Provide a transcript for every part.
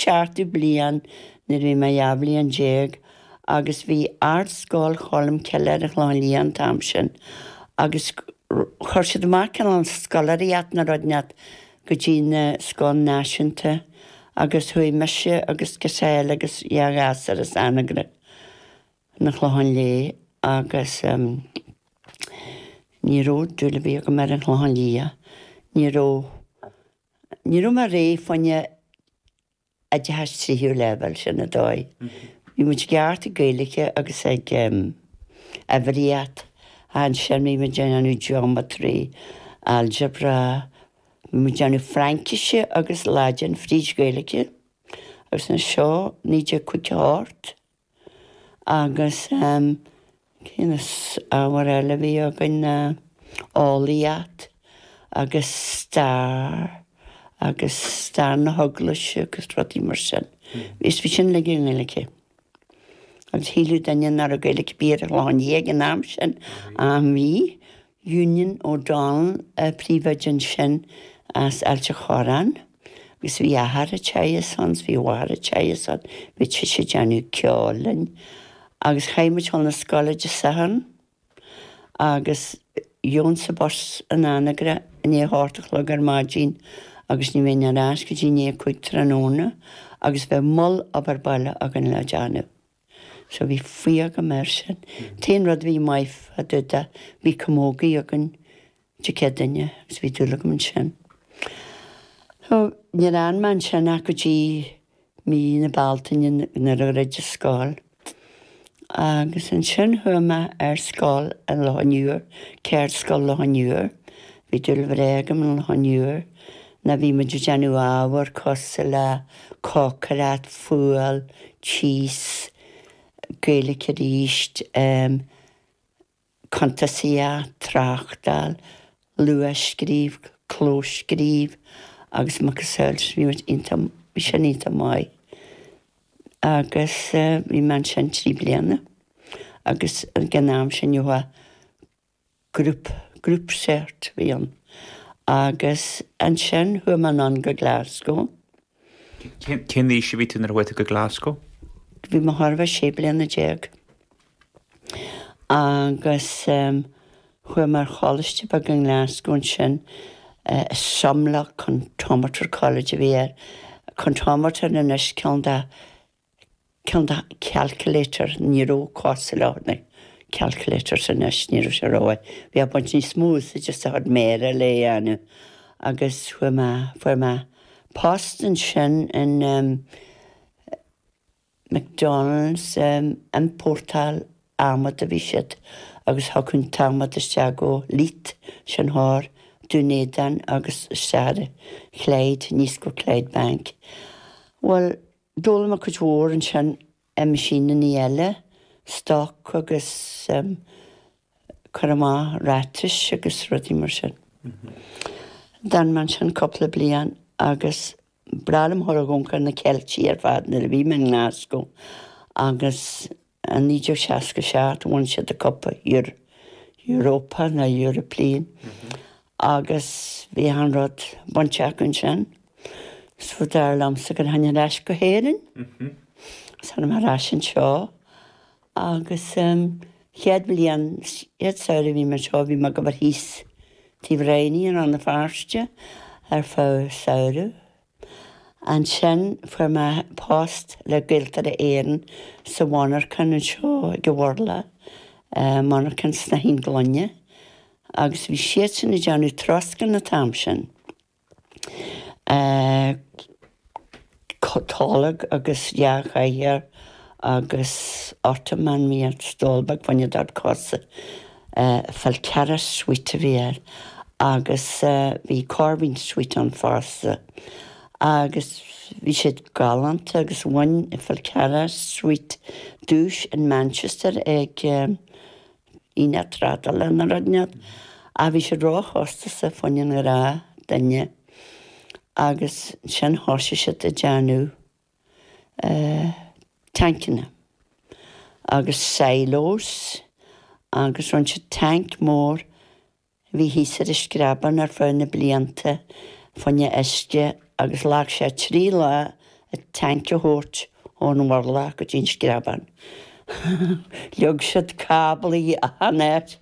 seachtú bliain nuair a bhí mé dhá bhliain déag agus bhí Ardscoil Cholmcille ar an Chlochán Liath an t-am sin agus chuir siad amach cineál scoláireacht nó rud inteacht go dtí na scoileanna náisiúnta agus chuaigh mise agus girseach eile agus dhá ghasúr as Anagaire chun an Chlocháin Léith agus ní raibh dúil ar bith agam ar an Chlochán Liath, ní raibh. Ní raibh mé réidh fá choinne oideachas tríú leibhéal, sin an dóigh. Bhí muid ceart ag Gaeilge agus ag uimhríocht. Ansin bhí muid ag déanamh geometry, algebra, bhí muid ag déanamh Fraincise agus Laidin fríd Gaeilge. Agus ba é seo 1958. agus cén ábhar eile a bhí againn, eolaíocht agus stair agus stair na heaglaise agus rudaí mar sin. Bhí sin uilig i nGaeilge. Agus shíleadh daoine nach raibh Gaeilge ar bith ar an Chlochán Liath ag an am sin, ach bhí. Eunan O'Donnell an príomhoide ansin as Ailt a Chorráin agus bhí Máthair Ignatius ann, bhí Máthair Ignatius ann, bhí sise ag déanamh ceoil linn agus chaithfeadh muid a ghabháil chun na scoile Dé Sathairn agus gheobhainnse an bus in Anagaire i ndiaidh a hocht a chlog ar maidin agus ní bheinn ar ais go dtí i ndiaidh a cúig tráthnóna agus bheadh moll obair baile againn le déanamh. So bhí fuath agam air sin. T-aon rud a bhí maith fá dtaobh de, bhí camógaíocht againn Dé Céadaoine agus bhí dúil agam ansin. So níor fhan mé ansin ach go dtí mí na Bealtaine nuair a dhruid an scoil. Agus ansin chuaigh mé ar scoil in Loch an Iúir, Ceardscoil Loch an Iúir, Bhí dúil bhreá agam in Loch an Iúir nuair a bhí muid ag déanamh ábhar cosúil le cócaireacht, fuáil, tíos, Gaeilge arís, em, cuntasaíocht, tráchtáil, luathscríobh, clóscríobh agus macasamhail sin, bhí muid iontach, bhí sin iontach maith. Agus, eh, bhí mé ansin trí bliana agus ag an am sin, Group, Group Cert a bhí ann. Agus ansin chuaigh mé anonn go Glasgow. Cén aois a bhí tú nuair a chuaigh tú go Glasgow? Bhí mé chóir a bheith sé bliana déag. Agus chuaigh mé ar choláiste beag i nGlasgow ansin, Sumlock Comptometer College a bhí air. Comptometer anois ceann de cineál de calculator, ní raibh cosúil leis na calculators anois, ní raibh sé ró, bhí ag baint níos mó úsáide as do chuid méara le é a dhéanamh agus chuaigh mé, fuair mé post ansin in McDonald's, ag iompórtáil adhmaid a bhí siad agus thiocfadh an t-adhmad isteach go Leith, ansin thoir, Dún Éideann agus isteach ar Clyde, aníos go Clydebank. Bhuel. D'fhoghlaim mé cuid mhór ansin i machine-annaí eile, stoc agus cur amach ráitis agus rudaí mar sin. D'fhan mé ansin cúpla bliain agus ba bhreá liom a ghabháil a dh'amharc ar na Ceiltigh ar fad nuair a bhí mé i nGlaschú agus I 1967 bhain siad an cupa Europa nó European agus bhí an rud bainte acu ansin. So dar liomsa go rachainn ar ais go hÉirinn agus tháinig mé ar ais anseo agus an chéad bhliain, chéad samhradh a bhí mé anseo bhí mé ag obair thíos tigh Bhraighní i Rann na Feirste ar feadh samhraidh. Ansin fuair mé post le Gaeltarra Éireann sa mhonarchan anseo ar an Mhurlach, monarchan snáithín gloine, agus bhí siadsan ag déanamh troscán an t-am sin, tolg agus dhá chathaoir agus ottoman, bhí an stól beag fá choinne do chosa Falcarragh Suite a bhí air agus bhí Corveen Suite ann fosta agus bhí siad galánta agus bhain Falcarragh Suite duais in Manchester ag aonach trádála nó rud inteacht ach bhí siad róchostasach, fá choinne an ghnáthdhuine agus ansin thosaigh siad ag déanamh. tancanna agus silos agus rinne siad tanc mór a bhí thíos ar an Screabán ar feadh na blianta fá choinne uisce agus ghlac sé trí lá an tanc a thabhairt ón Mhurlach go dtí an Screabán. Leag siad cáblaí achan áit.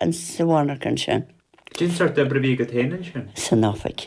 insa bhealach ansin. Cén sórt oibre a bhí agat féin ansin? San oifig.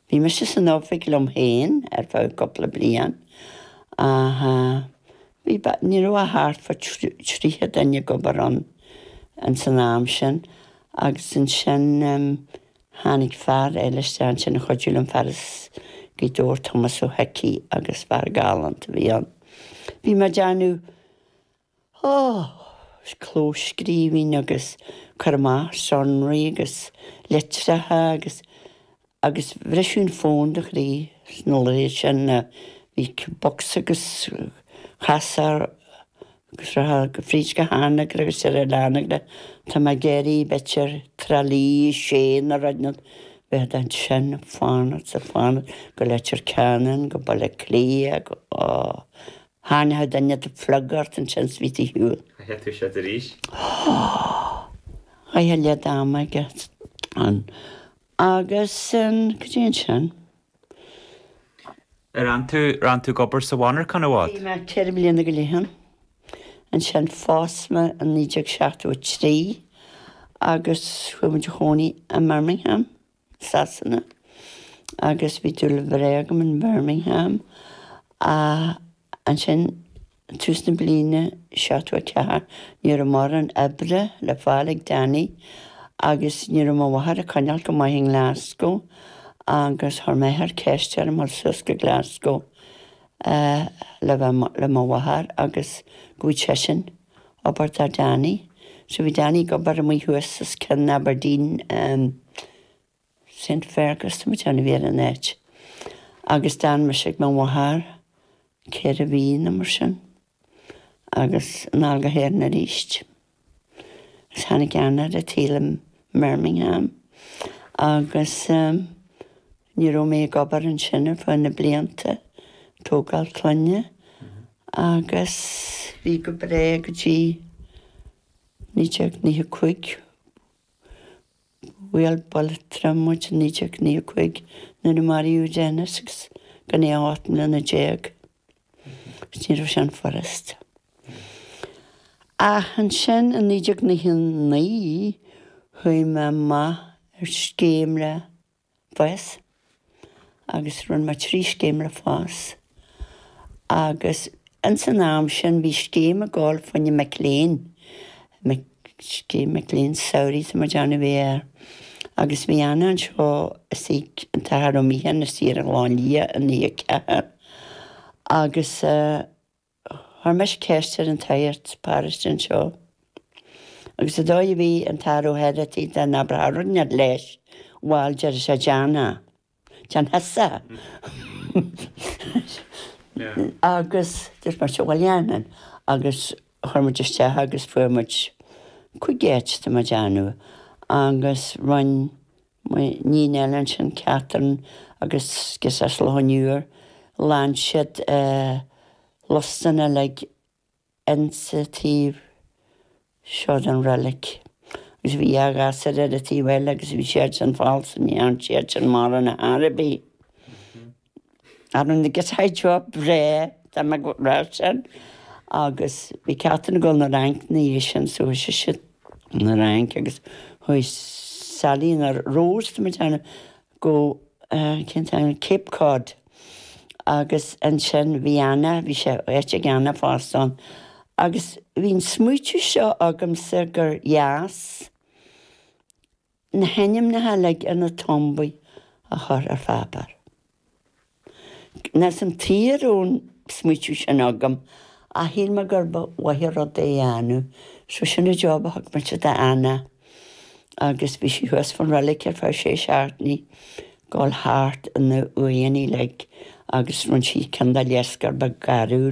Bhí mise san oifig liom féin ar feadh cúpla bliain ach bhí, ní raibh ach thart fá tríocha duine ag obair ann ins an am sin agus ansin tháinig fear eile isteach ansin a chuidiú liom, fear as Gaoth Dobhair, Tomás Ó hIcí agus fear galánta a bhí ann. Bhí mé ag déanamh. Is clóscríbhinn agus cur amach sonraí agus litreacha agus agus bhriseadh an fón do chroí sna laethe sin a bhí bocsa agus casúr fríd go hAnagaire agus ar fhilleadh Anagaire tá mé ag iarraidh b'fhéidir, Tralee, Séanadh, Raghnall, bheifeá ansin ag fanacht is ag fanacht go Leitir Ceanainn go Baile Átha Cliath go Tharraingeadh duine do phluga ort ansin is imithe ar shiúl. Chaithfeá toiseacht arís. Chaithfeá leath d'am aige ann. Agus go dtí ansin. Ar fhan tú? Ar fhan tú ag obair sa mhonarchan i bhfad? Bhí mé ceithre bliana go leith ann. Ansin phós mé i 1973 agus chuaigh muid a chónaí i mBirmingham. Sasana agus bhí dúil bhreá agam in Birmingham ach ansin tús na bliana 74 ní raibh mórán oibre le fáil ag Danny agus ní raibh mo mháthair ag coinneáil go maith i nGlasgow agus chuir m'athair ceist orm dhul suas go Glasgow le bheith le mo mháthair agus go bhfaigheadh seisean obair do Danny. So bhí Danny ag obair amuigh thuas os cionn Aberdeen ehm Saint Fergus tá mé ag déanamh a bhí ar an áit. Agus d'fhan mise ag mo mháthair ceithre mhí nó mar sin agus anall go hÉirinn aríst. Agus tháinig Anna ar an tsaol i mBirmingham agus ehm ní raibh mé ag obair ansin ar feadh na blianta tógáil clainne Agus bhí go breá go dtí 1995. Bhuail buille trom muid i 1995 nuair a maraíodh Dennis agus gan é ach ocht mbliana déag. Agus ní raibh sin furast. Ach ansin i 1999 chuaigh mé amach ar scéim le. FÁS agus rinne mé trí scéim le FÁS agus ins an am sin bhí scéim ag gabháil faoi na mic léinn, scéim mic léinn samhraidh tá mé ag déanamh a bhí air agus bhí Anna anseo is ag an tAthair Ó Míocháin is iarr a Ghleann Liath in Uí 4 agus eh, Chuir mise ceist ar an tsagart paróiste anseo agus sé an dóigh a bhí an tAthair Ó hOireachtaigh dá n-abrófá rud inteacht leis, bhail, deireadh sé, Déan é. Déan thusa é. Agus dúirt mise, bhail dhéanfainn. Agus chuir muid isteach agus fuair muid cúig áit, tá mé ag déanamh. Agus rinne. Muinín eile ansin, Catherine agus Cecil Ó Nualláin, ghlan siad lustan uilig ins an taobh seo den reilig. Agus bhí dhá ghasúr ar an taobh eile agus bhí siad sin falsa, ní thearn siad sin mórán ar chor ar bith. Ar an gcéad droch bhreith, tá mé go raibh sin agus bhí Catherine ag dul na Fhrainc na dhiaidh sin so chuaigh sise na Fhrainc agus chuaigh Sally na Rós tá mé ag déanamh go cén t-ainm Cape Cod agus ansin bhí Anna bhí sé áit ag Anna fosta ann agus bhí an smaoitiú seo agamsa gur dheas Na hainmneacha uilig ar na tombaí a chur ar pháipeár. Níl a fhios agam tuige a raibh an smaoitiú sin agam, ach shíl mé gurb mhaith an rud é a dhéanamh, so sin an job a thug mise d'Anna, agus bhí sí thuas fán reilig ar feadh sé seachtainí, gabháil thart ar na huaigheanna uilig agus rinne sí cineál de léarscáil bheag garbh le,